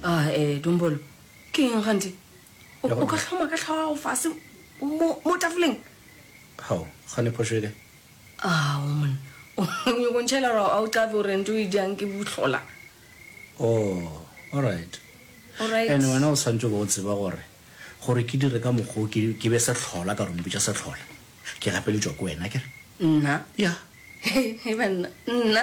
a ah, e dombolo ke eng gante o ka tlhoma ka tlhogo gago fase mo tafoleng gao gane phošoele a ah, o monna go ntšhela gore a o tlafe gore nto e jang ke botlhola o oh, allright and wena o santse ba o tseba gore gore ke dire ka mokgwa ke be setlhola ka rompe ja setlhola ke gapeletšwa ke wena kere nna ya e banna nna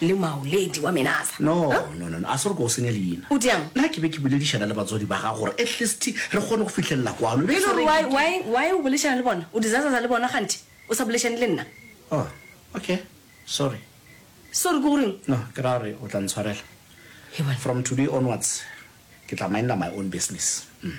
Le Maoledi wa Menasa. No, no, no, no, a se re ke go senye leina. O diang? Na ke be ke boledišana le batswadi ba gago gore at least re kgone go fihlelela kwano. E be e le gore why, why, why o boledišana le bona? O dizazaza le bona kganthe o sa boledišane le nna? Oh, okay, sorry. Sorry ke go reng? No, ke ra gore o tla ntshwarela. He bona. From today onwards, ke tla mindla my own business. Umm.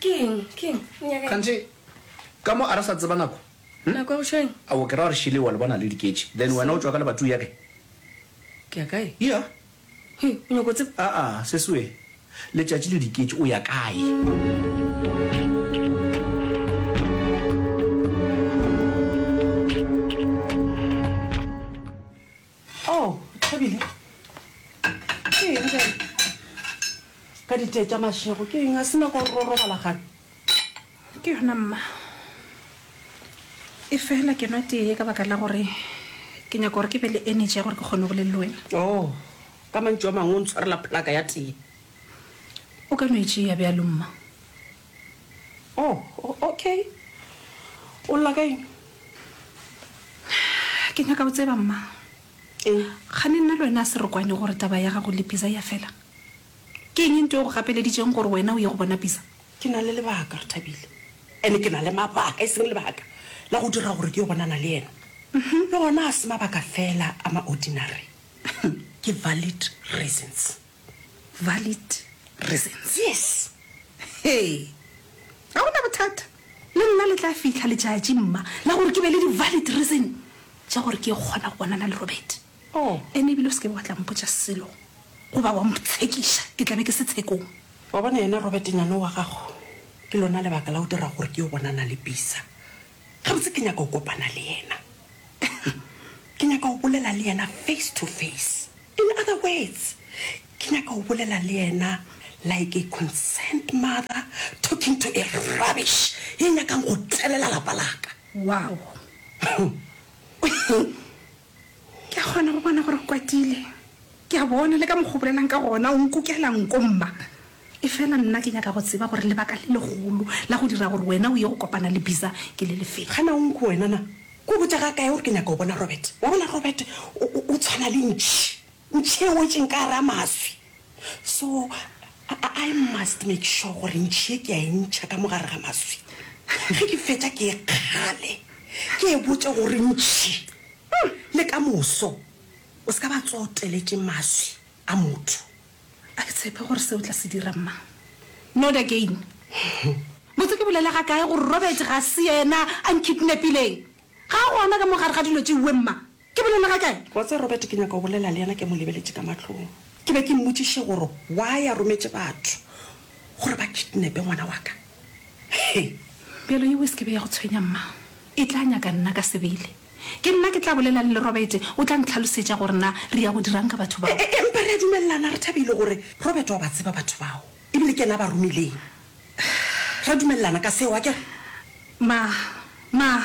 Ke eng? Ke eng? O nyaka eng? Kganthe, ka mo a re sa tseba nako. Hm? Nako ya go tšhwa eng? A o ke ra gore Shirley wa le bona a le diketše, then wena o tšwa ka lebatuu ya kae? Ke ya kae? Yeah. He, o nyaka go tseba? Aa, sesi we. Letšatši le diketše, o ya kae? Oh, Thobile. Ke eng ka ka ditee tša mašego? Ke eng a se nako ro robala gane? Ke yona mma. E fela ke nwa tee ka baka la gore ke nyaka gore ke be le energy ya gore ke kgone go le le wena. Oh, ka mantšu a mangwe o ntshwarela plaka ya tee. O ka no e tšea bjalo mma. Oh, oh, okay. O lla ka eng? Ke nyaka go tseba, mma. Eng? Gane nna le wena a se re kwane gore taba ya gago le Pisa ya fela. Ke eng ntho e go gapeleditšeng gore wena o ye go bona Pisa? Ke na le lebaka, re Thabile. Ene ke na le mabaka, e seng lebaka, la go dira gore ke yo bonana le yena. Le gona ga se mabaka fela a ma-ordinary. Ke valid reasons. valid reasons. Yes! Hee! Ga gona bothata. Le nna le tla fihla letšatši, mma, la gore ke be le di-valid reason tša gore ke kgona go bonana le Robert. Oh. Ene ebile o se ke be wa tla mpotša selo goba wa mtshekiša, ke tla be ke se tshekong. Wa bona, yena Robert Nyanowa gago, ke lona lebaka la go dira gore ke yo bonana le Bisa. Gabotse ke nyaka go kopana le yena. Ke nyaka go bolela le yena face to face. In other words, ke nyaka go bolela le yena like a concerned mother talking to a rubbish ye nyakang go tselela lapa laka. Wow! Ke a kgona go bona gore o kwatile. Ke a bona le ka mokgwa o bolelang ka gona, o nkukela nko, mma. Efela nna ke nyaka go tseba gore lebaka le legolo la go dira gore wena o ye go kopana le Bisa ke le lefe. Ga na o nku wena na? Ke go botša ga kae gore ke nyaka go bona Robert? Wa bona, Robert o, o, o tshwana le ntšhi. O tšeoetšeng ka gare ga maswi. So, I, I must make sure gore ntšhi ye ke a e ntšha ka mo gare ga maswi. Ge ke fetša ke e kgale, ke e botše gore ntšhi, umm, le ka moso o se ka ba tsoa o teletše maswi a motho. A ke tshepe gore se o tla se dira, Mma. Not again. Botse ke bolele ga kae gore Robert ga se yena a nkidnapileng? Ga a gona ka mo gare ga dilo tše uwe, Mma. Ke bolele ga kae? Wa tseba, Robert, ke nyaka go bolela le yena ke mo lebeletše ka mahlong. Ke be ke mmotšiše gore why a rometše batho gore ba kidnape ngwana wa ka. He! Bjalo yeo e se ke be ya go tshwenya, mma. E tla nyaka nna ka sebele. Ke nna ke tla bolelang le Robert, o tla ntlhalosetša gore na re ya go dira'ng ka batho bao. E-e-e, empa re a dumelelana, re thabile gore Robert wa ba tseba batho bao. E bile ke yena a ba romileng. Ra dumelelana ka seo, akere? Ma, ma,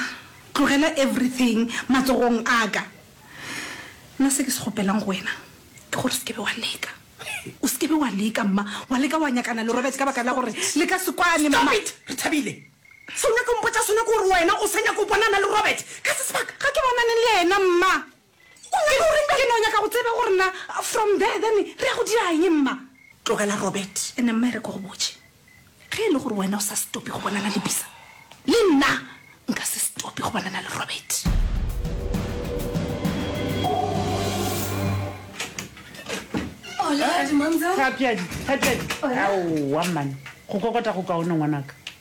tlogela everything matsogong a ka. Nna se ke se kgopelang go wena ke gore se ke be wa leka. O se ke be wa leka, mma, wa leka wa nyakana le Robert ka baka la gore le ka se kwane, mma. Stop it, Rethabile! Se o nyaka go mpotša sona ke gore wena o sa nyaka go bonana le Robert ka se sebaka. Ga ke bonane le yena, mma. Ke no nyaka go tseba gore na from there then re ya go dira eng mma? Tlogela Robert. Ene mma e re ke go botše, ge e le gore wena o sa stop go bonana le Bisa, le nna nka se stop go bonana le Robert. Hola, Dumamzela. Thapiadi, Thapiadi. Hola. Aowa mman, go kokota go kaone ngwanaka.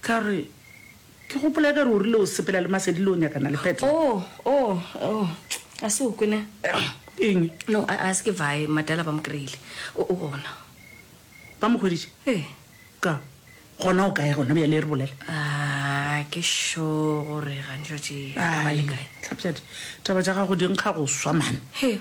Ka re, Ke gopola e ka re o rile o sepela le Masedi le o nyakana le Petro. Oo, oo, oo, a se o kwe na? Eng? No, a, a se ke vae, Madala ba mo kry-ile o, o gona. Ba mo hweditše? Ee. Ka, Gona o kae gona bjale, e re bolela. Aa, ke sure gore gantšwatši a ba le kae. Aa, hlapjadi, taba tša gago di nkga go swa, man. He,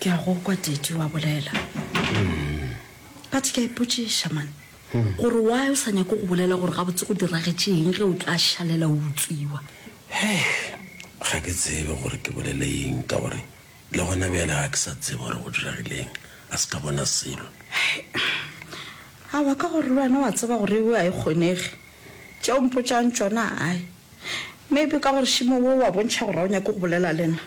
ke a go kwa teti wa bolela but ke a ipotšiša e mane hmm. gore why o sa nyako go bolela gore gabotse go diragetšeeng ge o tla šalela o utswiwa ga ke tsebe gore ke bolele eng ka gore le gona bjale ga ke sa tsebe gore go diragileng a se ka bona selo awa ka gore le wena wa tseba gore eo a e kgonege tšeo mpotšang tsona ae Maybe ka gore šimo wo wa bontšha gore ga o nyake go bolela le nna.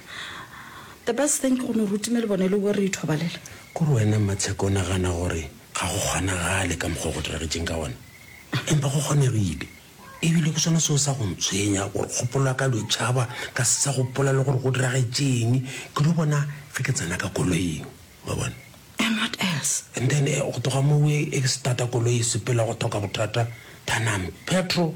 The best thing ke go no rutime le bone le boe re ithobalele. Kore wena Mmatsheko o nagana gore ga go kgonagale ka mokgwa o go diragetšeng ka wona? Empa go kgonegile. Ebile ke sona seo sa go ntshwenya gore kgopolo ya ka lo e tšhaba ka se sa gopola le gore go diragetšeng ke lo bona ge ke tsena ka koloing. Wa bona? And what else? And then go tloga moo e starta koloi e sepela go thoka bothata than I'm petrol.